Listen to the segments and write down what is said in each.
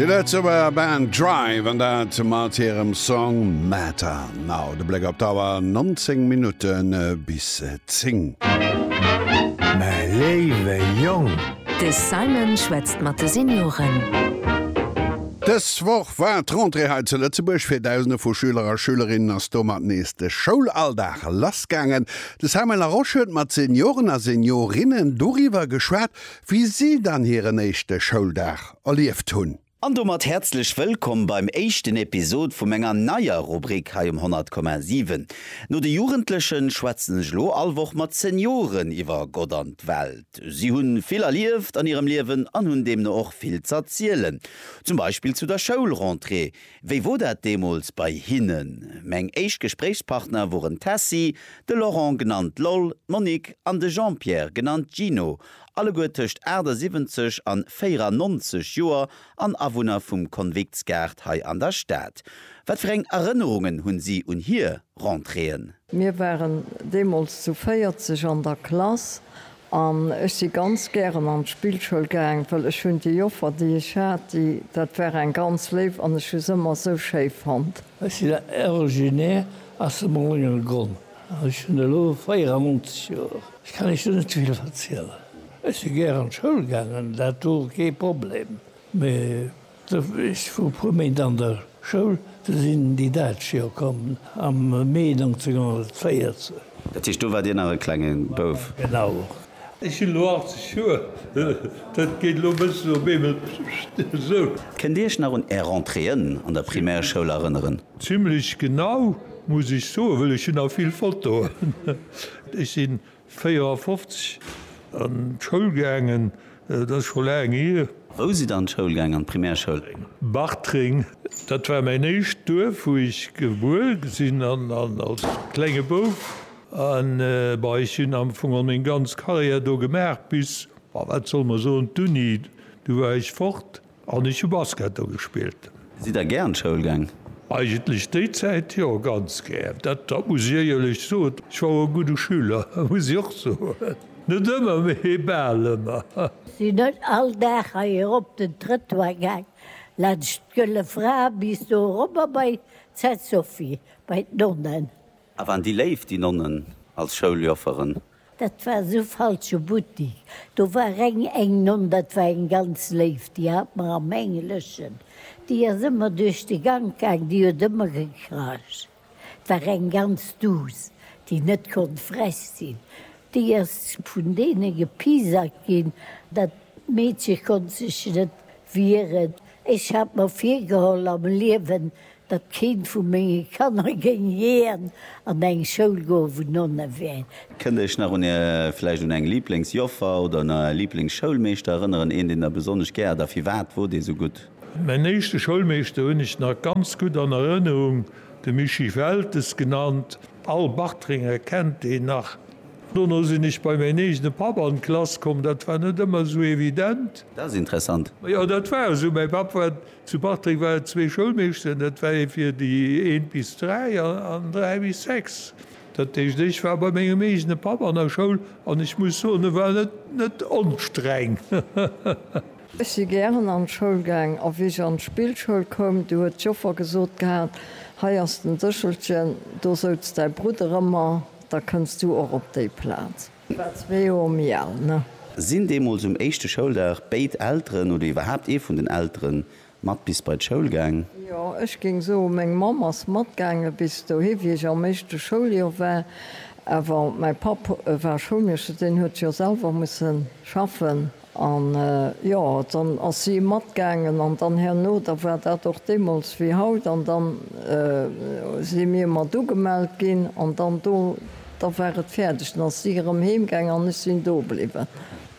Déi Lëtzebuerger Band Drive an dat mat hirem Song Matter Now. De Bléck op d'Auer, 19 Minutte bis 10. Mäi léiwe Jong! De Simon schwätzt mat de Senioren. Dës Woch war d'Rentrée hei zu Lëtzebuerg. Fir Dausende vu Schüler a Schülerinnen ass domat nees de Schoulalldag lassgaangen. De Samuel Laroche huet mat Senioren a Seniorinnen doriwwer geschwat, wéi si dann hiren éischte Schouldag erlieft hunn. An domat häerzlech wëllkomm beim éischten Episod vu menger neier Rubrik hei um 100,7. No de Jugendlechen schwätzen ech elo all Woch mat Senioren iwwer Gott an d'Welt. Si hunn vill erlieft an hirem Liewen an hunn deemno och vill z'erzielen. Zum Beispill zu der Schoulrentrée. Wéi wor dat deemools bei hinnen? Meng éischt Gespréichspartner woren d'Tessy, de Laurent genannt Loll, d'Monique an de Jean-Pierre genannt Gino. Alleguer tëscht 78 an 94 Joer an Awunner vum Konviktsgaart hei an der Stad. Wat fir eng Erënnerungen hunn si un hier Rentréeën? Mir waren deemools zu 40 an der Klass an ech si ganz gären an d'Spillschoul gaang, well ech hunn déi Joffer, déi ech hat, déi, dat war eng ganz léif an ech hu se ëmmer esou schéi fonnt. Ech sinn originaire aus dem Lëngelegronn. Ech hunn elo 94 Joer. Ech kann Iech do net vill verzielen. Ech si gär an d'Schoul gaangen, dat wor kee Problem. Mee ech wor e puer Méint an der Schoul, du sinn déi Däitsch jo komm am Mee 1914. Dat heescht, do waart Dir nach e klenge Bouf? Genau. Ech hunn elo 80 Joer, dat geet elo e bëssen op eemol esou. Kënnt Dir Iech nach un Är Rentréeën an der Primärschoul erënneren? Zimmlech genau, muss ech soen, well ech hunn nach vill Fotoen. Ech si 54 an d'Schoul gaangen, dat ass scho laang hier. Wou sidd Der an d'Schoul gaangen, an d'Primärschoul? Bartreng, dat war mäin éischt Duerf, wou ech gebuer sinn an als klenge Bouf A bei ech hunn am Fong och meng ganz Karriär do gemaach bis, ma wat soll mer soen, d'Uni, du war ech fort an ech hu Basket do gespillt. Sidd Der gär an d'Schoul gaang? Eigentlech déi Zäit jo, ganz gär. Dat dat muss ech éierlech soen. Ech war och e gudde Schüler, muss ech och soen. Net ëmmer, mee bal ëmmer. Sinn net all Dag hei erop den Trëttoir gaang, laanscht d'Gëlle Fra bis do erobber bei d'Sainte Sophie, bei d'Nonnen. A waren déi léif, déi Nonnen, als Schouljofferen? Dat war esou falsche Buttik. Do war reng eng Nonn, dat war eng ganz léif, déi hat mer am Engleschen, déi ass ëmmer duerch de Gank gaang, déi huet ëmmer gekracht. Et war eng ganz duuss, déi net konnt frech sinn. Déi ass vun deene gepiesackt ginn. Dat Meedche konnt sech net wieren. Ech hat mer virgeholl, am Liewen datt keent vu menge Kanner géing jiän an eng Schoul goen, wou Nonne wären. Kënnt Iech nach un Är, vläicht un eng Lieblingsjoffer oder un Är Lieblingsschoulmeeschter erënneren? Een, deen Der besonnesch gär hat a firwat wor dee sou gutt? Mäin éischte Schoulmeeschter hunn ech nach ganz gutt an Erënnerung, de Mischii Weltes genannt. All Bartrenger kennt deen nach. Dono sinn ech bei mäin eegene Papp an d'Klass komm, dat war net ëmmer sou evident. Dat ass interessant. Jo, dat war esou. Mäi Papp war Zu Bartreng war et zwee Schoulmeeschteren, dat war ee fir déi eent bis dräi an dräi bis sechs. Dat heescht, ech war bei mengem eegene Papp an der Schoul an ech muss soen, e war net onstreng. Ech si gären an d'Schoul gaang a wéi ech an d'Spillschoul koum, du huet d'Joffer gesot gehat, hei ass den Séchelchen, do souz däi Brudder ëmmer, da kënns du och op déi Plaz. War zwee Joer méi al, ne? Sinn deemools um éischte Schouldag béid Elteren oder iwwerhaapt ee vun den Eltere mat bis bei d'Schoul gaang? Jo, ech géing soen, meng Mamm ass matgaange bis dohi, wéi ech am éischte Schouljoer war. Awer mäi Papp war Schoulmeeschter, deen huet jo selwer musse schaffen An, jo, dann ass si matgaangen, an dann herno, da war dat och deemools wéi haut, an dann si mir mat ugemellt ginn, an dann do, da war et fäerdeg, dann ass si erëm heemgaangen an ech sinn do bliwwen.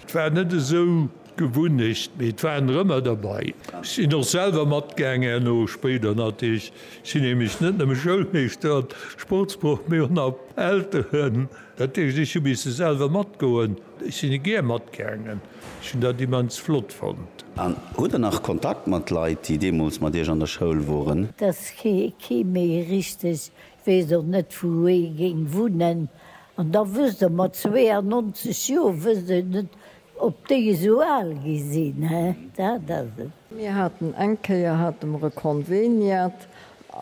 Et war net esou d'Gewunnecht, mee et waren der ëmmer derbei. Ech sinn och selwer matgaangen herno, spéider natierlech. Ech sinn nämlech net nëmme Schoulmeeschter an Sportsproff, mee och nach Elteren. Dat heescht, ech hu misse selwer matgoen. Ech sinn e gär matgaangen. Ech hunn dat immens flott fonnt. An hutt der nach Kontakt mat Leit, déi deemools mat Iech an der Schoul woren? Dass kee méi richteg weess, och net wou ee géing wunnen. An da wësst Der, mat 92 Joer wësst een net, ob déi esou al gi sinn, dat ass et. Mir haten eng Kéier, hate mer e Konveniat,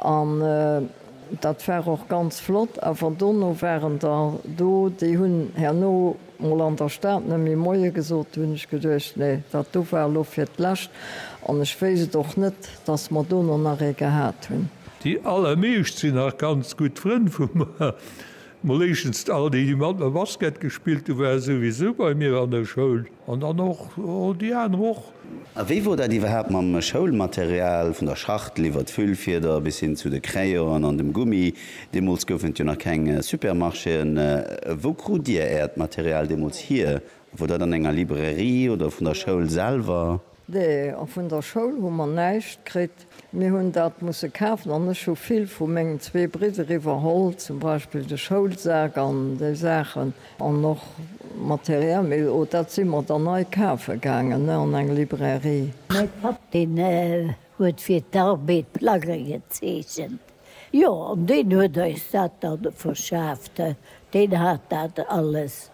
An dat war och ganz flott. Awer dono waren der do, déi hunn herno mol an der Stad net méi Moie gesot. Do hunn ech geduecht, Nee, dat do war elo fir d'Lescht. An ech wéisst et och net, dass mer dono nach ee gehat hunn. Déi allermeescht sinn nach ganz gutt Frënn vu mer. Mol éischtens all déi, déi mat mer Basket gespillt hunn, ware souwisou bei mir an der Schoul. An dann och déi aner och. A wéi wor dat iwwerhaapt mam Schoulmaterial, vun der Schachtel iwwert d'Füllfieder bis hin zu de Crayonen an dem Gummi? Deemools goufen et jo nach keng Supermarchéen. Wou krut Dir Äert Material deemools hier? Wor dat an enger Librairie oder vun der Schoul selwer? Nee, och vun der Schoul hu mer näischt kritt. Mir hunn dat musse kafen an ech hu vill vu mengen zwee Bridder iwwerholl, zum Beispill de Schoulsak an déi Saachen an och materiell, mee o dat si mer dann nei kafe gaangen, ne, an eng Librairie. Mäi Papp, deen Huet fir d'Arbed Plagge gezeechent, jo, an deen huet eis dat da verschaaft, deen hat dat alles.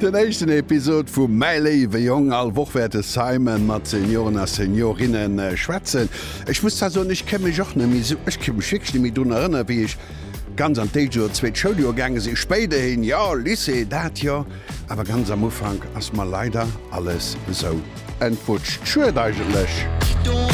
Den éischten Episod vu Mäi léiwe Jong. All Woch wäert de Simon mat Senioren a Seniorinnë schwätzen. Ech muss zwar soen, ech ka mech och net méi esou, ech ka mech wierklech net méi drun erënnere wéi ech ganz an d'éischt oder zweet Schouljoer gaange sinn. Spéiderhin, jo, Lycée, dat jo, awer ganz am Ufank ass mer leider alles esou entwutscht. Schued eigentlech.